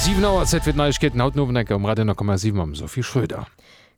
7 Auer, Zäit fir d'Neiegkeeten haut den Owend enker um Radio 10,7 mam Sophie Schröder.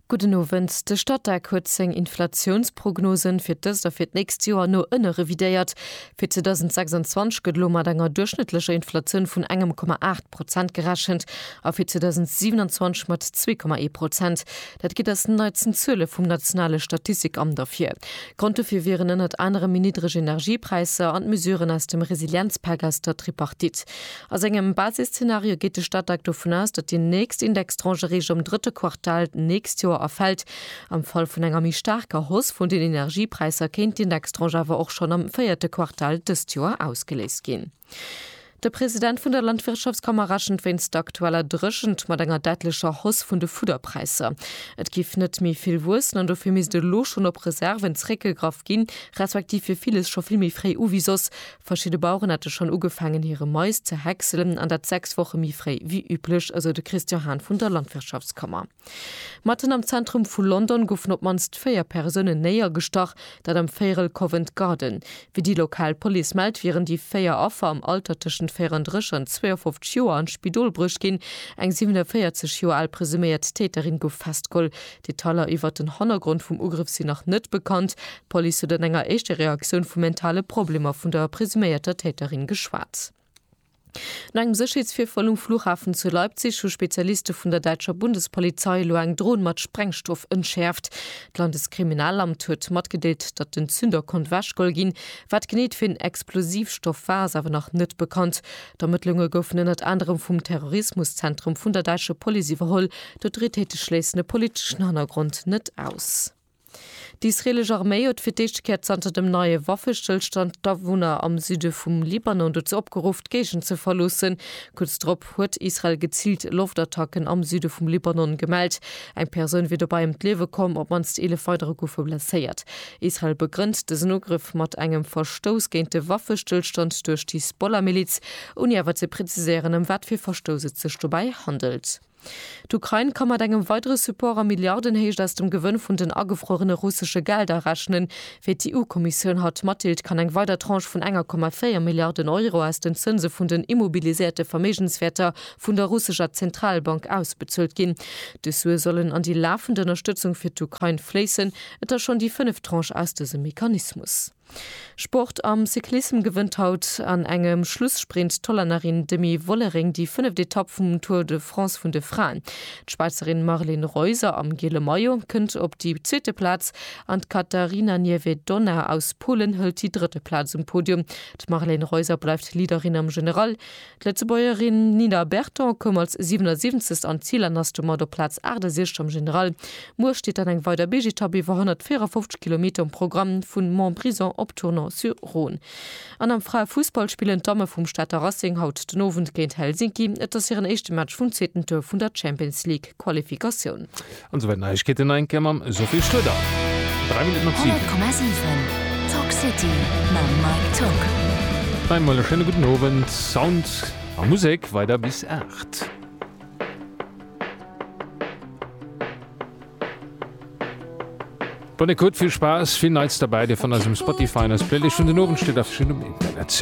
Gudden Owend. De Statec huet seng Inflatiounsprognosen fir d'ëst a fir d'nächst Joer no ënne revidéiert. Fir 2026 gëtt elo mat enger duerchschnëttlecher Inflatioun vun engem Komma 8 Prozent gerechent a fir 2027 mat zwee Komma ee Prozent. Dat geet aus den neitsten Zuele vum nationale Statistikamt ervir. Grond dofir wieren ënnert anerem méi niddreg Energiepräisser an d'Mesuren aus dem Resilienzpak aus der Tripartite. A sengem Basisszenario geet de Statec dovun aus, datt déi nächst Indextranchereege am drëtte Quartal d'nächst Joer erfält. Am Fall vun enger méi staarker Hausse vun den Energiepräisser kéint d'Indextranche awer och schonn am véierte Quartal dëst Joer ausgeléist ginn. De President vun der Landwirtschaftskammer rechent wéinst der aktueller Dréchent mat enger däitlecher Hausse vun de Fudderpräisser. Et géif net méi vill wuessen an dofir misst elo schonn op Reserven zeréckgegraff ginn, respektiv fir villes scho vill méi fréi u wéi soss. Verschidde Baueren hätte schonn ugefaangen hire Mais ze häckselen an dat 6 Woche méi fréi wéi üblech, esou de Christian Hahn vun der Landwirtschaftskammer. Matten am Zentrum vu London goufen op d'mannst véier Persounen néiergestach, dat am Véierel Covent Garden. Wéi déi lokal Police mellt, wieren déi véier Affer am Alter tëschent 34 an 52 Joer an d'Spidol bruecht ginn. Eng 47 Joer al presuméiert Täterin gouf festgeholl. Detailer iwwert den Hannergrond vum Ugrëff sinn nach net bekannt. D'Police huet an enger éischter Reaktioun vu mentale Problemer vun der presuméierter Täterin geschwat. No engem Sécherheetsvirfall um Flughafen zu Leipzig hu Spezialiste vun der däitscher Bundespolizei elo eng Dron mat Sprengstoff entschäerft. D'Landeskriminalamt huet matgedeelt, datt den Zünder konnt ewechgeholl ginn. Wat genee et fir en Explosivstoff war, ass awer nach net bekannt. D'Ermëttlunge goufen ënnert anerem vum Terrorismuszentrum vun der däitscher Police iwwerholl. D'Autoritéite schléissen e politeschen Hannergrond net aus. D'isreelesch Arméi huet fir d'éischte Kéier zanter dem neie Waffestëllstand d'Awunner am Süde vum Libanon dozou opgeruff, d'Géigend ze verloossen. Kuerz drop huet Israel geziilt Loftattacken am Süde vum Libanon gemellt. Eng Persoun wier dobäi ëm d'Liewe komm, op d'mannst 11 weidere goufe blesséiert. Israel begrënnt dësen Ugrëff mat engem Verstouss géint de Waffestëllstand duerch d'Hisbollah-Miliz, ouni awer ze preziséieren, ëm wat fir Verstouss et sech dobäi handelt. D'Ukrain ka mat engem weidere Support a Milliardenhéicht aus dem Gewënn vun den agefruerene russesche Gelder rechnen. Wéi d'EU-Kommissioun haut matdeelt, kann eng weider Tranche vun 1,4 Milliarden Euro aus den Zënse vun den immobiliséierte Verméigenswäerter vun der russescher Zentralbank ausbezuelt ginn. Dës Sue sollen an déi lafend Ënnerstëtzung fir d'Ukrain fléissen. Et ass schonn déi fënneft Tranche aus dësem Mechanismus. Sport, Am Cyclissem gewënnt haut an engem Schlusssprint d'Hollännerin Demi Vollering déi fënneft Etapp vum Tour de France vun de Fraen. D'Schwäizerin Marleen Reuser am giele Maillot kënnt op déi zweete Plaz an d'Katarina Niewiadoma aus Polen hëlt déi drëtte Plaz um Podium. D'Marleen Reuser bleift Leaderin am General. D'Lëtzebuergerin Nina Berton koum als 77. an d'Zil an ass domat op Plaz 68 am General. Muer steet dann eng weider Big-Etapp iwwer 154 Kilometer um Programm vu Montbrison op Tournon-sur-Rhône. An am Fraefussball spillen d'Damme vum Stater Racing haut den Owend géint Helsinki. Et ass hiren éischte Match vum zweeten Tour vun der Champions League-Qualifikatioun. An souwäit Neiegkeeten a enke mam Sophie Schröder. Dräi Minutten op siwen. 100,7 Talk City mam Mike Tock. Hei emol e schéine gudden Owend. Sound a Musek weider bis aacht. Bonne Écoute, vill Spaass, vill Neits derbäi, dir fannt eis um Spotify an eis Playlist vun den Owendstidd a vill um Internet.